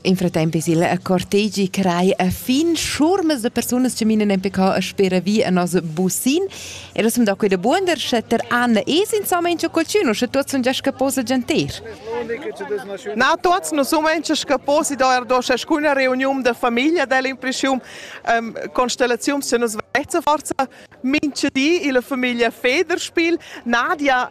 In fratemp es il cortegi crai a fin schurmas de persunas che minen en PK a spera vi a nos busin e das da quei de buonder sche ter Anna es insomma in qualcuno sche tuots sun già scaposa gentir Na tuots nu sun in scaposi da er do schuna reuniun de famiglia del impreschium ähm, constellazium se nos vezza forza minche di illa famiglia Federspiel Nadia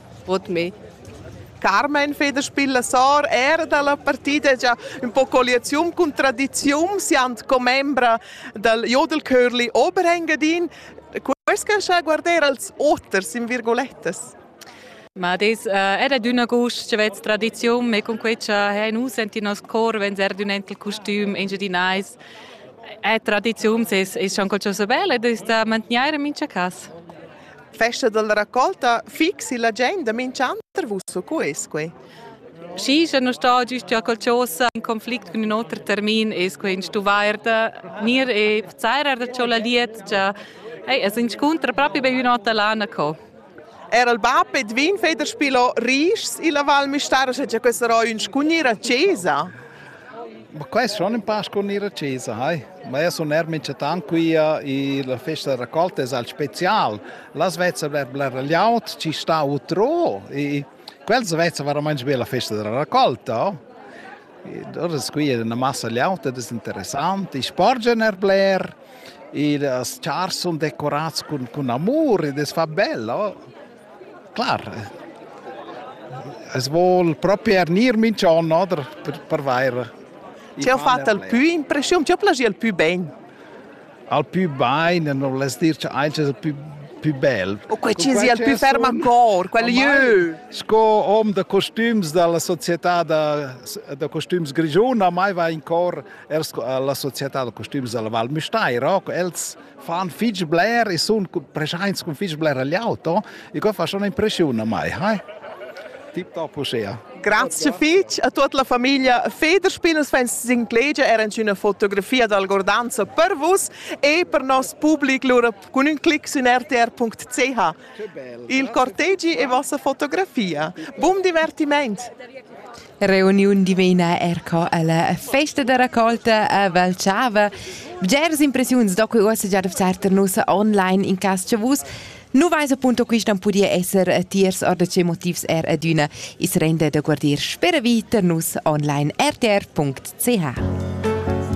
Vot me. Carmen Federspiel Sor era dalla partida già un po colliazium cun tradizium siand commembra dal Jodelkörli Oberengadin. Quels che sa guardar als oters in virgolettas. Ma das äh, era d'una gust che vez tradizium e con quei cha ha nus senti nos cor venzer d'un enkel costüm engiadinais. È tradizium ses es schon qualcosa bel ed ist da mantegnair in mincha cas. Festa dalla raccolta fixi la gent da minch'anter vusso cu es quei? Schi, sche non sta gist già qualchosa in conflict cun ün oter termin es quei in stuvairda. Nir e Zerer da cho la lietgia. Ei, es inscuntra propi be ün'ota lana co. Er il bab ed vin feder spilo rischs illa Val Müstair, sche già questa ro ün scugnir a Cesa. Ma quest schon ün pa sco gnir accesa, hai. Ma eir sun eir minchatant quia e la festa da racolta es al special. Las vezzan bler bler laud, chi sta utrò e quels vezzan veramaints be la festa da racolta, oh. E dort es quia üna massa laud ed es interessant. I sporgian eir bler e las chars sun decorats cun cun amur ed es fa bel, oh. Clar, es voul propi ernir minch'on, no, der per, per vaira. Ti has fatto il più impressione, ti has piacì il più bene? Al più bene non voles dir che anche il più più bel. O quei ci sia il più ferm ancora, quel jeu. Sco hom da costums dalla società da, da costums grigiuna mai va in cor er la società da costums dalla Val Müstair, els fan fitg bler e sun preschaints cun fitg bler liaut, no? E que fa schon impreschiun a mai, hai? Tip top uschea. Grazie fitg a tut la famiglia Federspinners Fans S'inclegia era una fotografia d'algordanza per vus e per nos public lura con un clic su rtr.ch. Il cortegi e vossa fotografia. Buon divertimento! Reuniun divina erco alla festa da raccolta a Valchava. Bgeras impressiuns da quei uossa già dafzar ter nus online in cas che vus nu vais appunto qui stan pudia esser tiers or da che motivs er adüna is rende da guardir spera vi ter nus online rtr.ch.